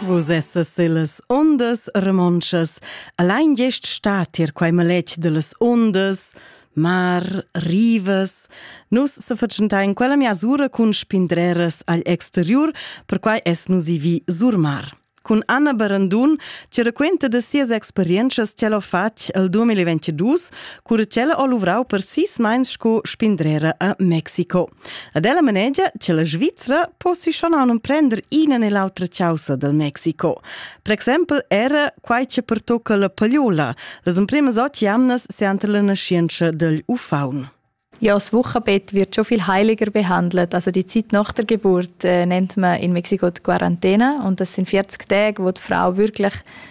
Vus essas illas ondas romontschas. Allein gest sta tier quei maletg dellas ondas, mar, rivas. Nus se facentain quella miasura cun spindreras agl exteriur, perquai es nus i vi sur mar. Cun Anna Barandun ci raquenta de sias experiences ce l'ho fatg al 2022 cura ch'ella ha luvrau per sis meins sco spindrera a Mexico. Ad ella manegia che la Svizzera possi schon aunum prender ina e l'autra causa del Mexico. Per exempel era quai che pertocca la pagliola, las emprimas otg jamnas seante la nascienza del ufaun. Ja, das Wochenbett wird schon viel heiliger behandelt. Also die Zeit nach der Geburt äh, nennt man in Mexiko die Quarantäne und das sind 40 Tage, wo die Frau wirklich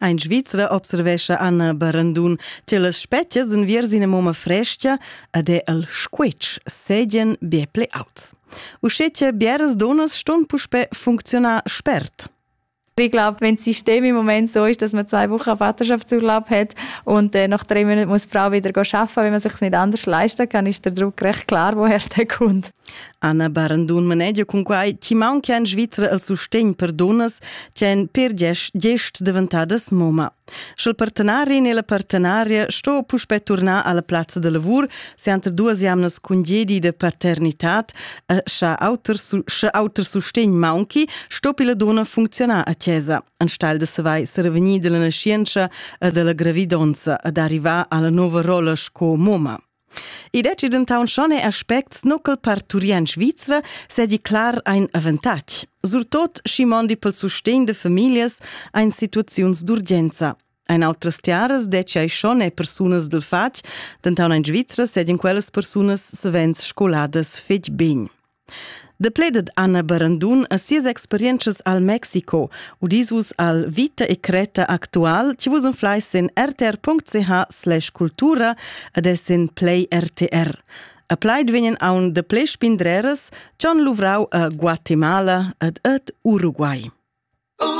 In Svizra observescha Anna Barandun che las spetgas enviers ina mumma fresca ed è el squitsch sedien be pli auts. Uschè che bieras donas ston puspè funcziunar spert. Ich glaube, wenn das System im Moment so ist, dass man zwei Wochen Vaterschaftsurlaub hat und äh, nach drei Monaten muss die Frau wieder arbeiten, wenn man sich es nicht anders leisten kann, ist der Druck recht klar, woher der kommt. Anna Barandun manegia cun quai chi maunca in Svizra al sustegn per dunnas che èn per gest daventadas moma. Sch'il partenarin e la partenaria sto puspè turnar alla plazza da lavur, se entre duas jamnas cun gedi de paternitad, eh, scha auter, sche auter sustegn maunchi, sto la donna funzionar a chiesa, anstelle de savai serevenir della nascienza e della gravidonza ad arrivare alla nova rolla sco moma. I deci dentaunt schon er aspects nucl per Turien Svizra sedi clar ein avantatg. Surtot schi mondi pel sustegn de familias ein situaziuns d'urgenza. Ein altras tiaras deci ai schon e persunas del fatg, dentaun ein Svizra sedien quellas persunas savens scoladas fetg bene. De pledet Anna Barandun a sias experientschas al Mexico, udisus al Vita e Creta actual, ci vus unflais in rtr.ch/cultura ed es in play RTR. A plaid vegnan aun de ple spindreras, cion luvrau a Guatemala ed et Uruguay.